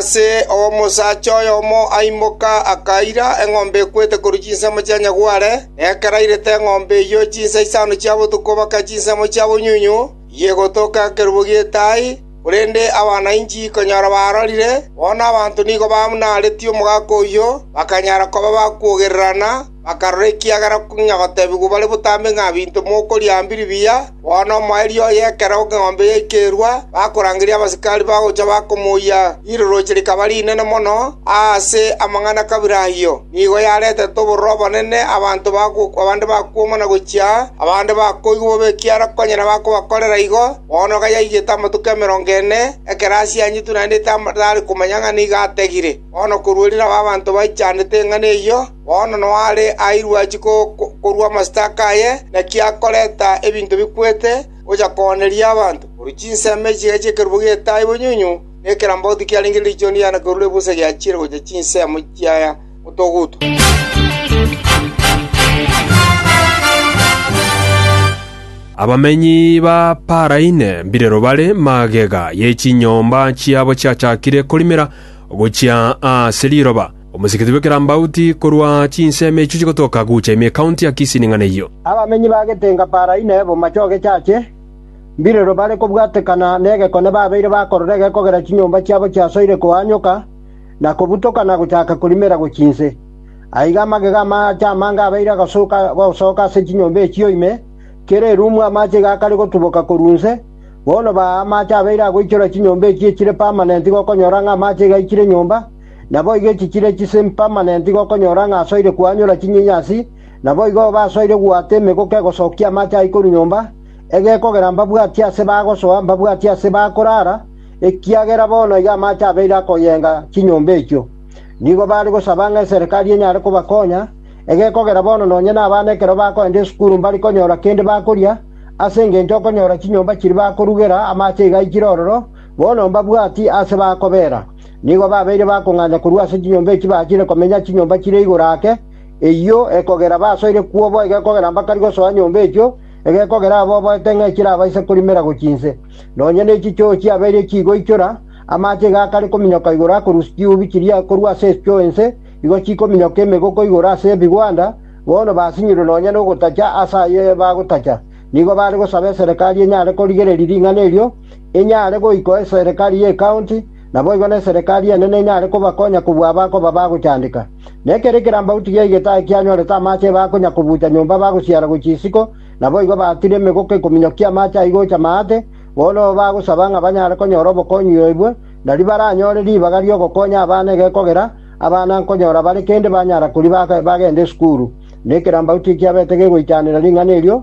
Ase oo omosacha oyomo aimoka, akaira eng'ombe ekwete korwa chinsemo chia nyagware, na ekero airete eng'ombe eyio chinsa isano chia botuko baka chinsemo chia bonyunyu iyia egotoka ekerubo gi'etaai, korende abana inchi konyora baarorire, bono abanto nigo bamnaretie omogaka oyio, bakanyara koba bakwogererana, bakarora ekiagera king'a gotebigwa bare botambe ng'a, Binto mokoria aa mbiri biya, bono omoerio oye ekero eng'ombe yaika erua, bakorangeria abasikari bagocha bakomoyia, riroroche rikaba rinene mono aase amang'ana kabira ayio. Nigo yaretete obororo obonene, abanto bagokwa abande bakwoma na gochia aa, abande bakoigwa bobe ekiagera konya nabakobakorera igo. Bono iga yaigete amatuko emerongo ene, ekero asianyetwe naende tari komanya ng'a nigo ategire. Bono korwa erirabe abanto baichandete eng'ana eyio. Bono noare airwe achie korua amasitaka aye, naki akoreta ebinto bikwete, gocha kooneria abanto. Korwa chinsemo echiga chi'ekerubo gi'etaai bonyunyunyu, na ekerambago tikiarenge riichoni riane korwa ebusa giachiire gocha chinsemo chia motoguto. Abamenyi ba Paraine mbirero bare magega ye chinyomba chiabo chiachakire korimera gochia ase riroba. Omosikiti bw'ekerambauti korwa chinsemo echio chigotoka gocha ime ekaunti ya Kisii ning'ana eyio. Abamenyi ba getenga Paraina e bomache o gechache, mbirero bare kobwatekana negekone babeire bakorora egekogera chinyomba chiabo chiasoire koanyoka na kobutoka na gochaka korimera gochia inse. Aiga amagega amaache amange abeire agasooka gosoka ase chinyomba echio ime, kera erumu amache iga akare gotuboka korwa inse, bono baa amache abeire agoichora chinyomba echio echire permanent gokonyora ng'a amache iga aichire nyomba, Naboigo echi chire chisimpamanenti gokonyora ng'a asoire koanyora chinyenyasi, naboigo basoire goata emegoka egosokia amache aa ikoru nyomba, egekogera mbabwati aase bagosoa, mbabwati aase bakorara, ekiagera bono iga amache abeire akoyenga chinyomba echio. Nigo bare gosaba ng'a eserekari enyare kobakonya, egekogera bono nonye nabana ekero bakoenda esukuru mbari konyora kende bakoria, ase engencho okonyora chinyomba chiri bakorugera amache iga aichire ororo, bono mbabwati aase bakobera. Nigo babeire bakong'anya korwa ase chinyomba echi bachire komenya chinyomba chire igoro ake, eyio ekogera basoire kwo boigo ekogera mbakari gosoa nyomba echio, egekogera aba oboete ng'a echirabaise korimera gochia inse. Nonya ne chichoo chiabeire chigoichora, amache iga akare kominyoka igoro akorusia chiubi chiria korwa ase esuchoo ense, igo chikominyoka emegoko igoro ase ebigwanda, bono basinyirwe nonya nogotacha ase ayio bagotacha. Nigo bare gosaba eserekari enyare korigereria ring'ana erio, enyare goikoa eserekari y'ecounty, Naboigo n'eserekari enene enyare kobakonya kobua abakoba bagochandeka. Na ekero ekerambauti gia egetaai kianyorete amaache ebakonya kobuucha nyomba bagosiara gochia isiko, naboigo baatire emegoka ekominyokia amaache ayio gocha maate, bono bagosaba ng'a banyare konyora obokonyi oibwe, nario baranyore ribaga ri'ogokonya abana egekogera, abana nkonyora bare kende banyara koriba bagende esukuru. Na ekerambauti ekiabete gegoichanera ring'ana erio,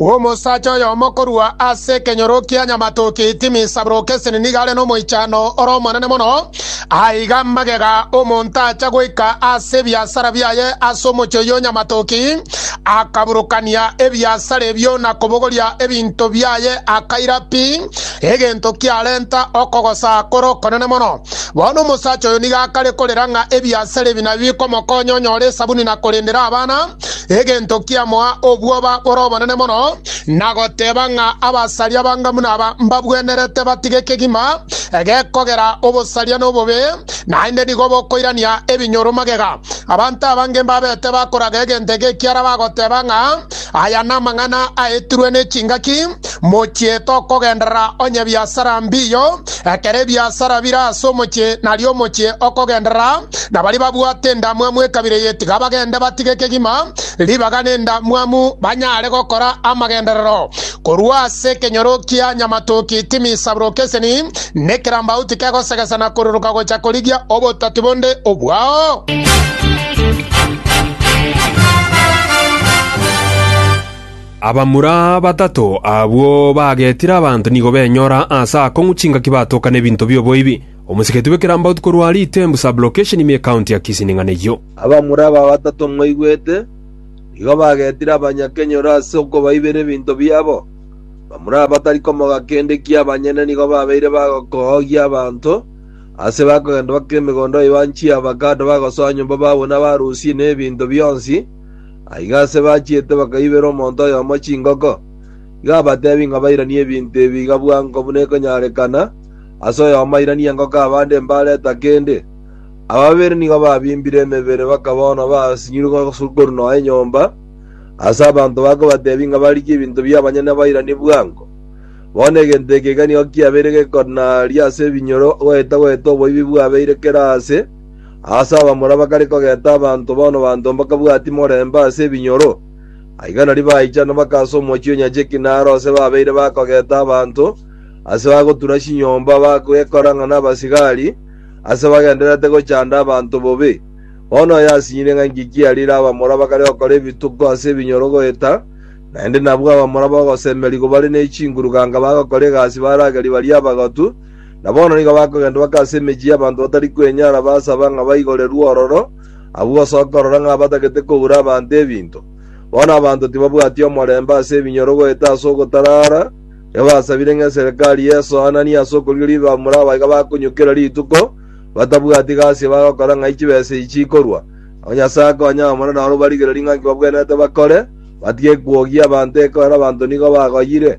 Omosacha oyomo korwa ase ekenyoro kia nyamatoki Timi-Sabrokeseni nigo are nomoichano ore omonene mono. Aiga magega omonto acha goika ase ebiasara biaye ase omochie oyio o nyamatoki, akaburokania ebiasara ebio na kobogoria ebinto biaye, akaira pi egento kiarenta okogosa kore okonene mono. Bono omosacha oyo nigo akare korera ng'a ebiasara ebi nabi bikomokonya onyore esabuni na korendera abana. egento kiamoa obwoba bore obonene mono, na goteba ng'a abasaria banga buna aba mbabwenerete batige kegima gekogera obosaria na obobe, naende nigo bokoirania ebinyoro magega. Abanto abange mbabete bakoraga egento eke ekiara bagoteba ng'a aya namang'ana aetirwe ne chingaki, Mochiete okogenderera onye ebiasara mbiyo, ekero ebiasara bire ase omochie, nario omochie okogenderera, na baria babwate endamwamu ekabire eye tiga bagende batige kegima ribaga nendamwamu, banyare gokora amagenderero korwa ase ekenyoro kia nyamatoki timi isabroke eseni, na ekerambau tikegosegesana koruruka gocha korigia obotati bonde obwao. Abamura batato abwo bagetire abanto nigo benyora aase akong'u chingaki batoka nebinto bi'oboibi. Omosigeti bw'ekerambaotu korwa Aritembu sub-location ime ekaunti ya Kisii ning'ana eyio. Abamura aba batato mwaigwete, nigo bagetire abanyakenyoro ase okobaibera ebinto biabo. Bamura aba batari komoga kende ki abanyene nigo babeire bagokoogia abanto aase bakogenda bakora emegondo baibaa nchiavakado bagosoa nyomba babuna barusie nebinto bionsi. Aiga ase bachiete bakaibera omonto oyomo chingoko. Iga abateebie ng'a bairanie ebinto ebi iga bwango buna ekonyarekana, aase oyomo airanie engoko abande mbareta kende. Aba babere nigo babimbire emebere bakaba bono basinyuru korwa nonya enyomba, aase abanto babo kobateebia ng'a barigie ebinto bi'abanyene bairanie bwango. Bono egento eke iga nigo kiabeire gekonaria ase ebinyoro goeta-goeta oboibi bwabeire kera aase, Aase abamura bakare kogenta abanto bono banto mbakabwatia morembe ase ebinyoro. Aiga nario baichana baka ase omochie o nyacheki naro ase babeire bakogenta abanto, ase bagotura chinyomba bagekora ng'a nabasigari, ase bagendererete gochanda abanto bobe. Bono oyo asinyire ng'a inki kiarire abamura bakare gokora ebituko ase ebinyoro goeta, naende nabwo abamura bogosemerigwa bare ne chinguru ganga bagokora egasi baragerie baria abagotu, Na bono nigo bakogenda bake ase emechie y'abanto batari kwenyara, basaba ng'a baigorerwe ororo, agwo gose okorora ng'a abatagete koura abanto ebinto. Bono abanto tibabwati omorembe ase ebinyoro goeta ase ogotarara, nigo basabire ng'a eserekari y'esoananie ase okorigereria ebibamura aba iga bakonyokera rituko, batabwati gasi bagokora ng'ai chibesa echi chikorwa. Nabo Nyasae akonye abamura naro barigererie ng'a nki babwenerete bakore, batige kwogia abanto ekiagera abanto nigo bagoyire.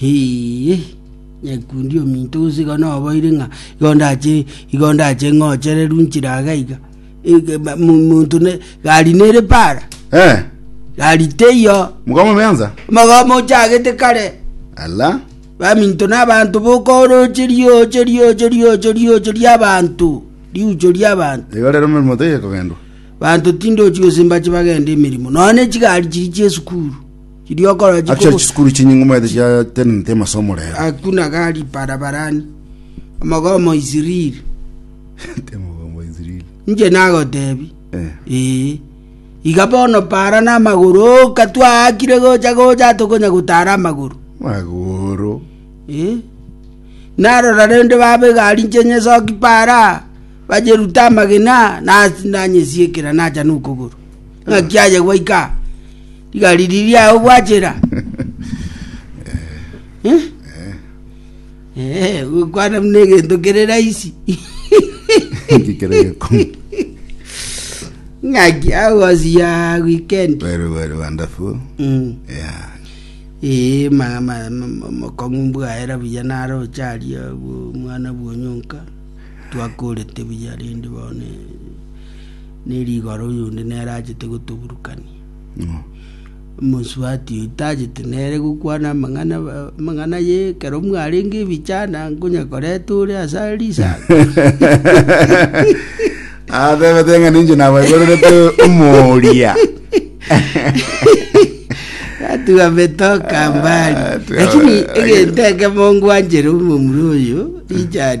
Hii, nyekundi ominto gose igo noboiri ng'a igo ndache igo ndache ng'ochererwe inchera iga iga. Ege- ma- mu- Monto ne gari nere para, Eh, gari teiyo, mukama meanza. mogomo ochagete kare. Ala. baminto na abanto bokoorocheria ocheria ocheria ocheria ocheria abanto riucho ria abanto Igo rero mirimo teiyo kogendwa. banto tindochi gose mbache bagende emirimo noone chigari chiri chiesukuru Chidiokora Achia chikobo chisukuru chinyinge omanyete chiatenenete amasomo rero. akuna gari barabarani, omogomo Isiriri. Temogomo Israeli. Inche nagotebi, Eh. ee, iga bono para n'amagoro oka twaakire gocha gocha tokonya gotara amagoro. Magoro. Eh? narora rende baba egari nche nyesoki para bacheruta amagena na- nanyesiekera nacha nokogoro ng'aki aye gwaika Rigari riria ao gwachera. Eh? Eh, gokwana buna egento kere raisi. Inki kere gekomi? Ng'aki agosi ya weekend. Very, very wonderful. Mm. Yeah. Ee, ma ma ma- mokong'u mbwaera buya naro ocharia bu- mwana bwonyonka. Twakorete buya rende bono ne rigoro oyonde nere achete gotoburukania. Omosuati oyo tachete nere gokwana amang'ana amang'ana ye ekero mwarenge ebichana nkonya koreta ore ase are risaga atebete ng'a ninche nabaigorerete omoria atiga metoka mbali Ah, tu- lakini egento ekemo ngwanchera omomura oyo richard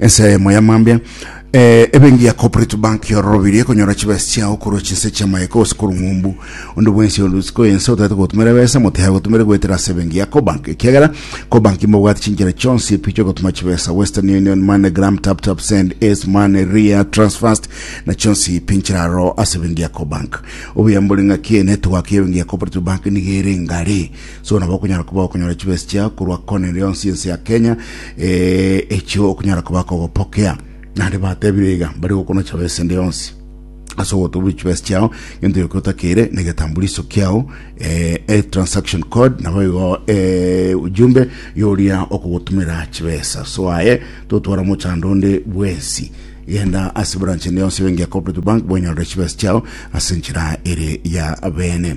Ensemo ya mambia. Eh, ebenki ya Cooperative Bank yororobirie konyora chibesa chiao korwa chinse chia maeko gose korwa ng'umbu. Onde bwensi ore isiko ense otaete gotumera ebesa motiga gotumere goetera ase ebenki ya Cobank ekiagera Cobank mbobwate chinchera chionsi pi chiogotuma chibesa Western Union, MoneyGram, TapTap Send, Ace Money, Ria, Transfast na chionsi pi nchiraro ase ebenki ya Cobank. Obuya mbore ng'aki enetwork ya ebenki ya Cooperative Bank nigo ere ngare So nabo okonyara koba okonyora chibesi chiao korwa kona ere yonsi ense ya Kenya eh, echio okonyara koba kogopokea. Nande batebire iga bari gokona chibesi ende yonsi ase ogotobu chibesi chiao gento yoke otakeire na egetambuliso kiao eh, e transaction code nabo igo eh, ujumbe yoria okogotumera chibesa so aye totwara mochando onde bwensi genda ase branch ende yonsi bengi ya cooperative bank bwenyorere chibesi chiao ase enchera ere ya bene